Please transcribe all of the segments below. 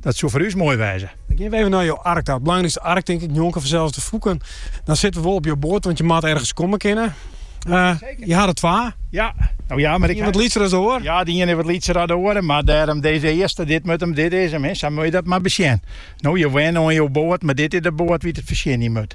Dat soe foar ús moai wêze. Dan gean we even nei jo ark ta. It belangrykste ark, tink ik, njonken fansels de fûken. Dan sitte we wol op jo boat, want je moat ergens komme kinne. Uh, jo ha der twa. Ja, no ja, mar ik... wat lytser as oar? Ja, dy iene wat lytser as oar, mar dêrom dizze earste, dit moat him, dit is him. Hè. Sa moat je dat mar besjen. No, jo wenne oan jo boat, mar dit is de boat dy't it fertsjinje moat.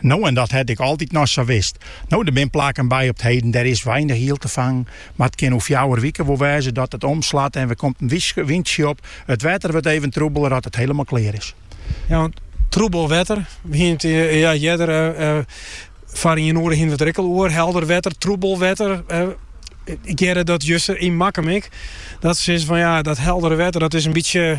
No en dat hat ek altyd noch sa west. No, der bin plakken by op 't heden, dêr is weinich iel te fangen, mar it kin oer fjouwer wike wol wêze dat it omslat en wer komt in wyntsje op. It wetter wurdt even troebeler as it hielendal klear is. Ja, want troebel wetter, we hiene it in jier earder foar ien oere hiene we it der ek al oer, helder wetter, troebel wetter. Ik hearde dat juster yn Makkum ek, dat se sizze fan ja, dat heldere wetter dat is in bytsje,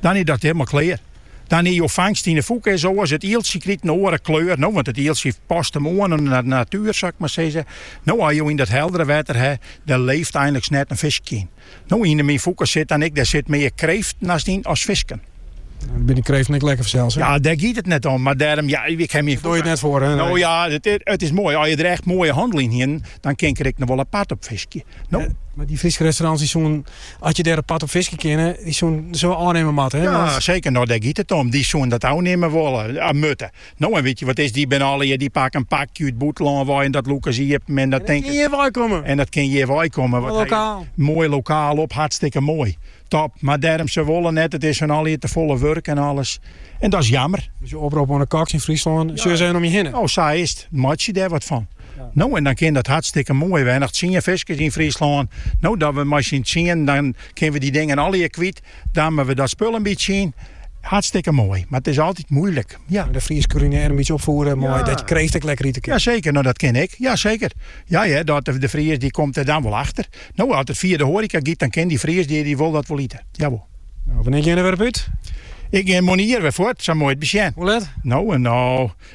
Dan is dat hielendal klear. Dan is jo fangst yn 'e fûke is oars. It ieltsje krijt in oare kleur, no, want it ieltsje past him oan oan de natuer, sil ik mar sizze. No, as jo yn dat heldere wetter ha, dêr leeft eindliks net in fiskje yn. No, yn 'e myn fûke sit dan ek, dêr sit mear kreeften hast yn as fisken. Dan binne kreeften ek lekker fansels, hè? Ja, dêr giet it net om, mar dêrom, ja, ik ken myn fûke. Dêr dogge je it net foar, hè? No ja, it is moai. As je der echt moaie hannel yn hienen, dan kin ik der ek noch wol apart op fiskje. No. Mar dy Fryske restaurants, dy soene As je dêr apart op fiskje kinne, dy soene dat soe ôfnimme moatte. Ja, want... seker. No, dêr giet it om. Dy soene dat ôfnimme wolle, eh, mutte. No, en wit je wat is, dy binne allegear, dy pakke in pakje út bûtenlân wei en dat lûke se iepen en dat tinken. En dat kin hjir wei kommen. En dat kin hjir wei kommen. Wat lokaal. Moai lokaal op, hartstikke moai. Top. Mar dêrom se wolle net, it is hun allegear te folle wurk en alles. En dat is jammer. Dus in oprop oan de koks yn Fryslân, ja. sjoch om je hinne. Oh, sa is it. Meitsje dêr wat fan. No en dan kin dat hartstikke moai. We bin noch tsien fiskers yn Fryslân. No dat we mei syn tsienen, dan kinne we dy dingen allegear kwyt. Damme we dat spul in bytsje yn. Hartstikke moai, mar it is altyd moeilik. Ja. De Fries kulinear in bytsje opfoere mei ja. dat je kreeft ek lekker ite kin. Jaseker, no dat kin ek. Jaseker. Ja, ja, dat de Fries dy komt der dan wol achter. No, as it fia de hoareka giet, dan kin dy Fries dy, dy wol dat wol ite. Jawol. No, wannear je der wer út? Ik gean moarn wer fuort, sa moat je it besjen. Hoe let? No, no,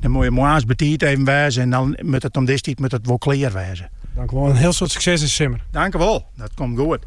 Dan moat je moarns betiid even wêze en dan moat it om dizze tiid moat it wol klear wêze. Dankjewol en hiel soad sukses dizze simmer. Dankjewol, dat komt goed.